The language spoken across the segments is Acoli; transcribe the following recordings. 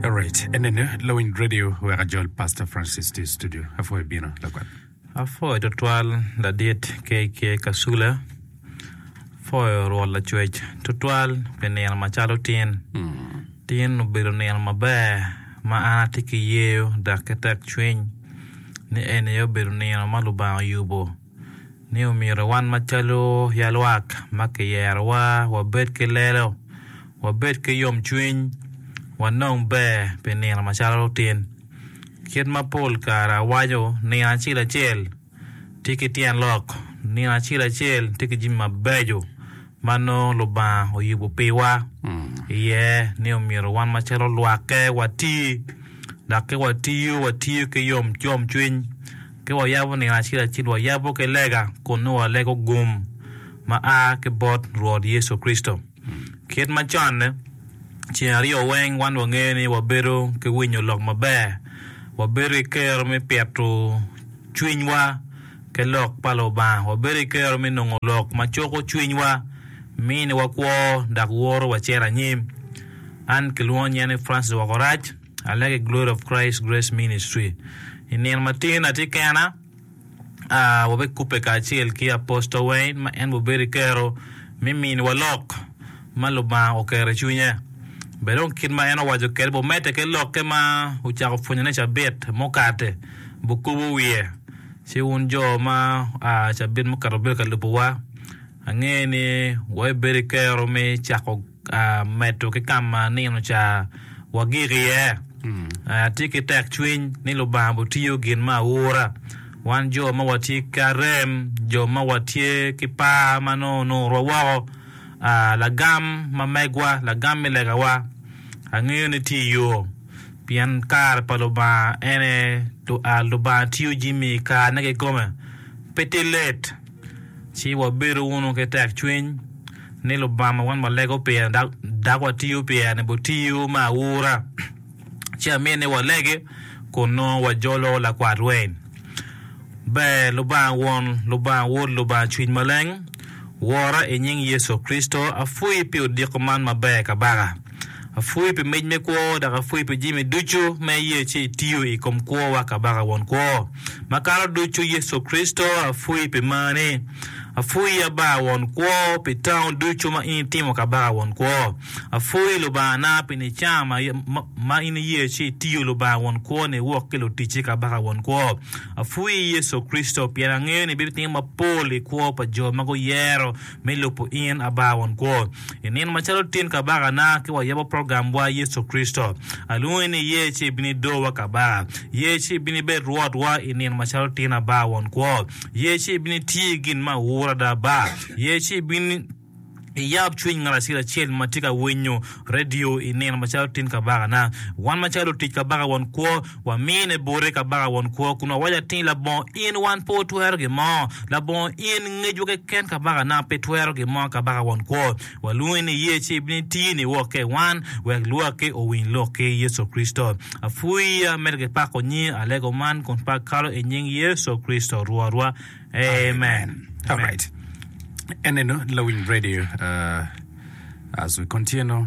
Alright, enene lawiny radio wek ajol Pastor Francis tye i studio. Apwoyo bino lakwat. Apwoyo tutwal ladit KK Kasula. Apwoyo Rwot Lacwec tutwal pi nino macalo tin. Tin obedo nino maber ma an atye ki yeyo dok ki tekcwiny ni eni aye obedo nino ma Lubanga oyubo. ni omyero wan macalo ya lwak ma kiyerowa wabed ki lelo, wabed ki yomcwiny, wanong ber pi nino macalo lutin. Kit ma pol kare awaco, nino acel acel tye ki tyen lok, nino acel acel tye ki jami mabeco ma nongo Lubanga oyubo piwa iye ni omyero wan macalo lwakke wati dok ki watiyo watiyo ki yomcwiny. Ka wayabo nino acel acel, wayabo ki lega kun nongo walego gum ma a ki bot Rwot Yecu Kricito. Kit macon-ni, ceng aryo weng wan wangeyo ni wabedo ki winyo lok maber, wabedo ki kero me pito cwinywa ki lok pa Lubanga, wabedo ki kero me nongo lok ma cuko cwinywa, miniwa kwo, dok woro wacito anyim. An kilwongo nying-na ni Francis Woko Rac. Alege Glory of Christ Grace Ministry. I nino ma tye ni atye kena, ah, wabikubbe kacel ki Apostle Wayne ma en wubedo i kero me miniwa lok ma Lubanga oketo i cwinye. Bene dong kit ma en owaco kwede bene omedde ki lokke ma wucako pwonyone cabit mukate, wukubo wiye. Ci wun jo ma oa cabit mukato wubedo ka lubowa, angeyo ni wabibedo ki kero me cako. medo ki ka ma nino ca wagik iye. Atye ki tekcwiny ni Lubanga bitiyo gin me aura. Wan jo ma watye ki arem, jo ma watye ki par ma nongo onurwa woko, lagam ma megwa, lagam me legawa, angeyo ni tye i yo, pien kare pa Lubanga en aye Lubanga tiyo jami i karene kikome. Pe tye let. Ci wabedo wunu ki tekcwiny ni Lubanga wan walego pire dok watiyo pire bot tiyo me aura. Ci amyero ni walege kun nongo wajolo lakwat rweny. Ber Lubanga Won, Lubanga Wod, Lubanga Cwiny Maleng wora i nying Yecu Kricito, apwoyi pi odiko man maber kabaka. Apwoyi pi mic me kwo, dok apwoyi pi jami ducu ma iye ci itiyo i kom kwowa Kabaka won kwo. Makato ducu Yecu Kricito, apwoyi pi marni. Apwoyi Aba won kwo pi tango ducu ma in itimo Kabaka won kwo. Apwoyi Lubangana pi nica ma in iye ci itiyo Lubanga won kwoni wok ki luticci Kabaka won kwo. Apwoyi Yecu Kricito pien angeyo ni ibitimo mapol i kwo pa jo ma guyero me lubo in Aba Won Kwo. I nino macalo tin Kabakana ki wayabo programwa Yecu Kricito, alwongi ni iye ci ibin ido wa Kaba. Iye ci ibin ibed Rwotwa i nino macalo tin Aba Won Kwo. Iye ci ibin iti gin ma ur ada Aba. Iye ci ibin iyab cwiny ngat acel acel ma tye ka winyo redio i nino macalo tin Kabakana. Wan macalo lutic Kabaka Won Kwo, Wamine bote kabaka won kwo, kun wawaco atir ni, Labongo in wan pe watwero gin mo, labongo in ngecwa keken kabakana pe twero gin mo kabaka won kwo. Walwongi ni iye ci ibino itiyo niwokke i wan, wek lwakki owiny lok ki Yecu Kricito. Apwiya medo ki pako nyingi alego man kun pak kalo i nying Yecu Kricito Rwotwa. Amen. Alright. Eneno Lawiny Radio uh, as we continue.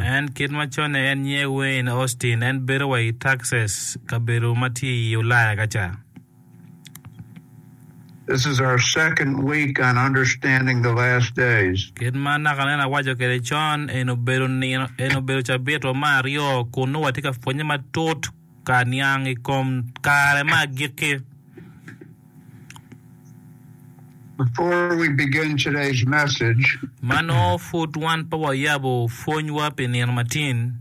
En kit ma conne en nyiye Wayne Austin, en bedo wa i Texas, kabedo ma tye i Ulaya ka ca. Kit ma naka nen awaco kwede con, eni obedo cabitwa me aryo kun nongo watye ka pwonnye matut ka niang i kom kare me agikki. Before we begin today's message, Ma nongo pud wan pe wayabo pwonywa pi nino matin,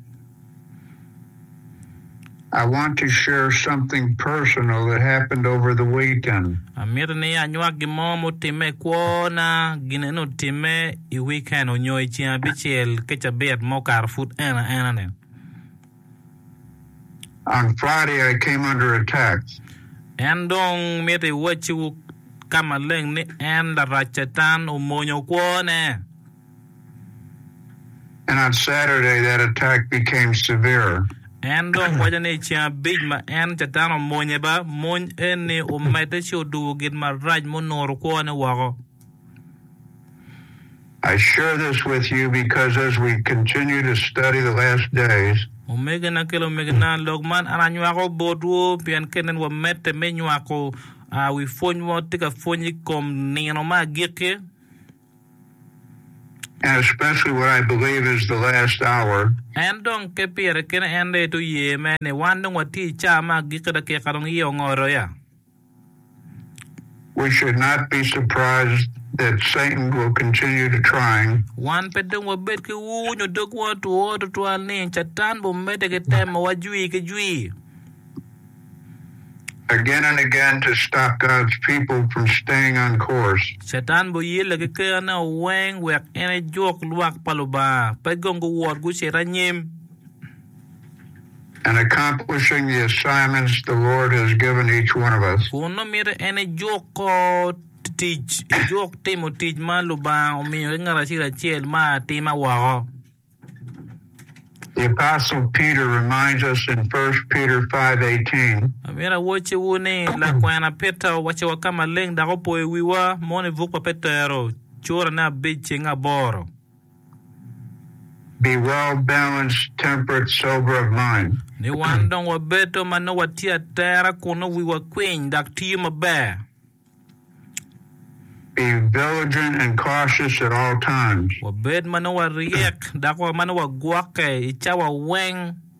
I want to share something personal that happened over the weekend. amito ni anywak gin mo mutimme i kwona. Gin eno otimme i wiken onyo i ceng abicel ki cabit ma okato pud en aena-ni. En dong mito iwacci ka maleng ni en, Larac Catan, omonyo kwone. En dong waco ni i ceng abic ma en, Catan, omonye ba, mony eni omedde ci odubo gin marac munuro kwone woko. Omegina ki lumegina, lok man an anywako botwu pien kit nen wamedde me nywako wi pwony ma watye ka pwony i kom nino me agikki. En dong ke pire kene en aye te oye me ni wan dong watye i caa me agikki dakika dong iye ongoto ya. We should not be surprised that Satan will continue to trying. Wan pe dong wabed ki ur nyo dogwa otwo tutwal ni Catan bimedde ki temowa jwi ki jwi. again and again to stop God's people from staying on course. Catan biyelle ki kerane weng wek en ejuk lwak pa Lubanga pe gong guwot gucito anyim. and accomplishing the assignments the Lord has given each one of us. Kun nongo miti en ejuk kor tic, ejuk timo tic ma Lubanga omiyo ki ngat acel acel ma atima woko. The Apostle Peter reminds us in 1 Peter 5:18. Amyero awocciwu ni, lakwena Peter owacciwa ka maleng dok opoyo wiwa, mono i buk pa Petero, curane abic ceng aboro. be well-balanced, temperate, sober of mind. Ni wan dong wabedo ma nongo watye atera kun nongo wiwa kwiny dok tiyo maber. Be viligent and cautious at all times. Wabed ma nongo waryek dok ma nongo wagwokke i cawa weng.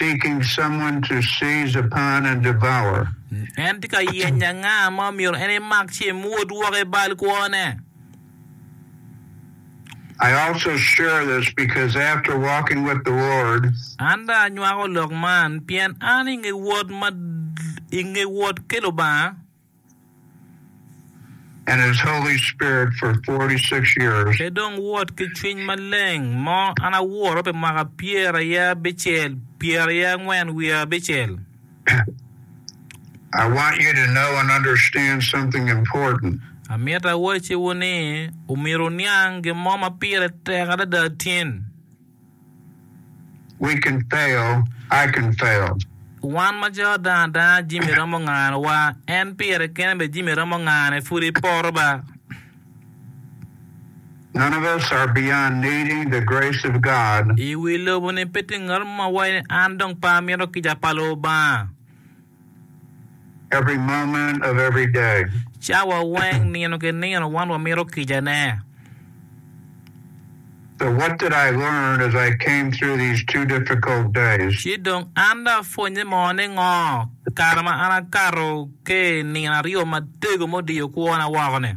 seeking someone to seize upon and devour. En tye ka yenyo anga ma omyero en emak ci emwod woko i bal kwone. I also share this because after walking with the Lord, An dong anywako lok man pien an i nge wot ma i nge wot ki Lubanga. and His Holy Spirit for 46 years. Pe dong wot ki cwiny maleng mo an awuro pi mwaka pyer aye abicel, pyer aye angwen wiye abicel. I want you to know and understand something important. Amito awacciwu ni, omyero wuniang gin mo ma pire tek adada tin. We can fail, I can fail. Wan ma jo dang adanga jami romo nganowa, en pire kene bene jami romo ngane pud iporo ba. None of us are beyond needing the grace of God. I wi lobo ni pe tye ngat mo ma waco ni an dong pe amito kica pa Lubanga. every moment of every day. Cawa weng, nino ki nino wan wamito kicane. So what did I learn as I came through these two difficult days? Ci dong an dong apwonnye mo ningo kare ma an akato ki i nino aryo matego mudiyo kwona woko-ni?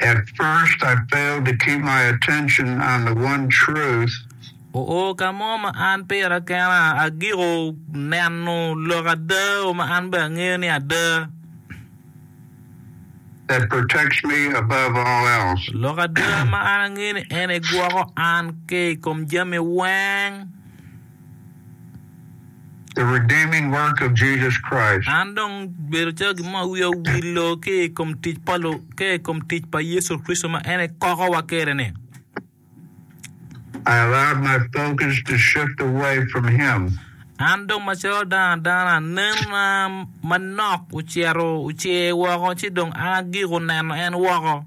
At first I failed to keep my attention on the one truth. Oo ka mo ma an pira kena agiko neno lok ada o ma an bene angeyo ni ada. That protects me above all else. Lok ada ma an angeyo ni en egwoko an ki i kom jami weng. the redeeming work of Jesus Christ. An dong bedo calo gin mo ma wiya owilo ki i kom tic pa Lu, ki i kom tic pa Yecu Kricito ma en ekokowa kede-ni. I allowed my focus to shift away from Him. An dong macalo dano adana, nenona manok ocito ocer woko ci dong agiko neno en woko.